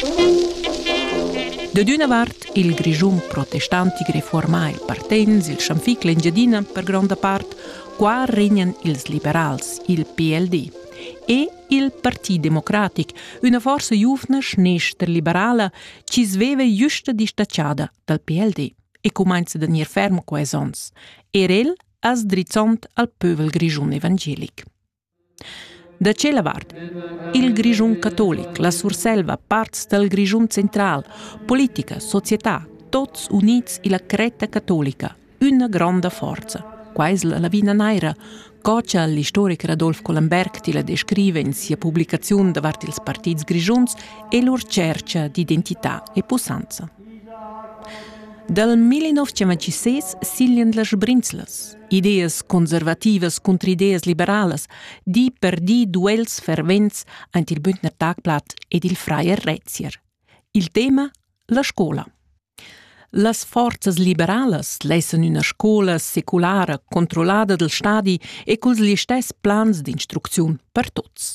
Da d'üna vart il Grischun protestantic reformà il Partenz, il Schanfic, l'Engiadina, per gronda part, qua regnan ils liberals, il PLD, e il Parti Democratic, üna forza giuvna schnestra-liberala chi sveva justa distaciada dal PLD e cumainza da gnir ferm quais ons, er el as drizzond al pövel grischun evangelic. Da tschella vart il Grischun catolic, la Surselva, parts dal Grischun central, politica, società, tots units illa cretta catolica, üna gronda forza. Quai es la lavina naira, co cha l'istoricher Adolf Collenberg tilla descriva in sia publicaziun davart ils partits grischuns e lur tschercha d'identità e pussanza. Dal 1926 siglian las Brinzlas, ideas conservativas cunter ideas liberalas, di per di duels fervents aint il Bündner Tagblatt ed il Freier Rezier. Il tema la scola. Las forzas liberalas lessan üna scola seculara controllada del stadi e culs listess plans d'instrucziun per tuts.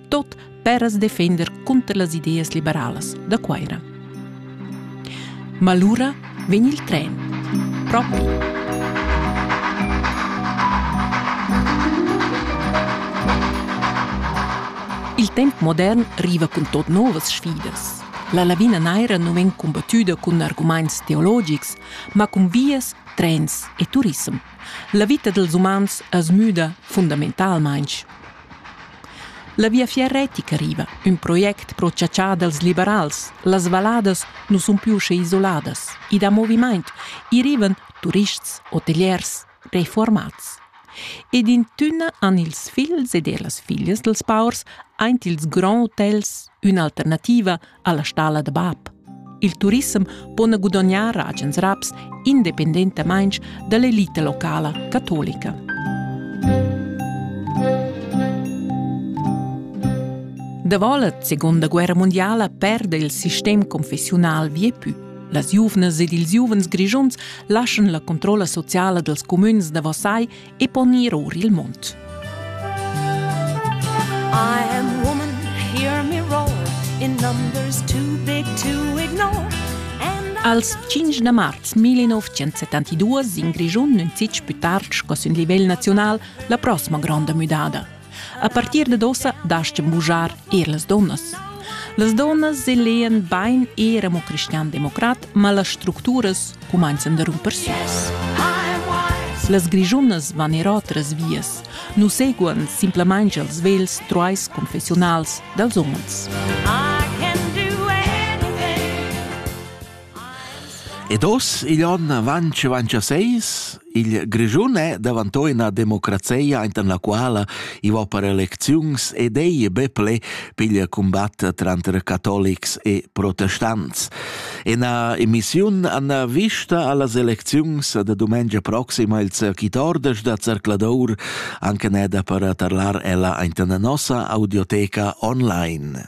tot per as defender cunter las ideas liberalas da Cuaira. Ma lura vegn il tren propi. Il temp modern riva cun tot novas sfidas. La lavina naira non vegn combattuda cun arguments teologics, ma cun vias, trens e turism. La vita dels umans es müda fundamentalmaing. La Viafier retica riva, ün project pro chatschar dals liberals. Las valladas nu sun più usche isoladas. I dà movimaint. I rivan turists, hoteliers, refuormats. Ed in tünna han ils figls ed ellas figlias dels paurs aint ils grands hotels ün'alternativa alla stalla da bab. Il turissem po gudognar agens raps independentamain dall'elita locala catolica. Davolet, seconda guerra mondiala, perde il sistem confessiunal viepü. Las giuvnas ed ils giuvens grigiuns lascian la controlla sociala dels comüns da Versailles e pon ir or il mund. I am woman, hear me roar, in numbers too big to ignore. Als 5 da marz 1972 in Grischun nun fitg più tard sco sün livel naziunal la prossima gronda müdada. A partir dad ossa dastgan bugiar er las donnas. Las donnas elean bain era mo cristian-democrat, ma las structuras cumanzan da rumper süs. Las grigiunas van er otras vias. Nu seguan simplamain els vels truais confessionals dels umens. Ed oz, igl onn avanc avantschaseis, il Grischun è davanto ina democrazia enten la quala i va per elecziuns ed ei be ple pigl combatt tranter catolics e protestants. Ina emissiun an vista allas elecziuns da domengia proxima il cirquitordes da Cercladour anche neda per tarlar ella enten nossa audioteca online.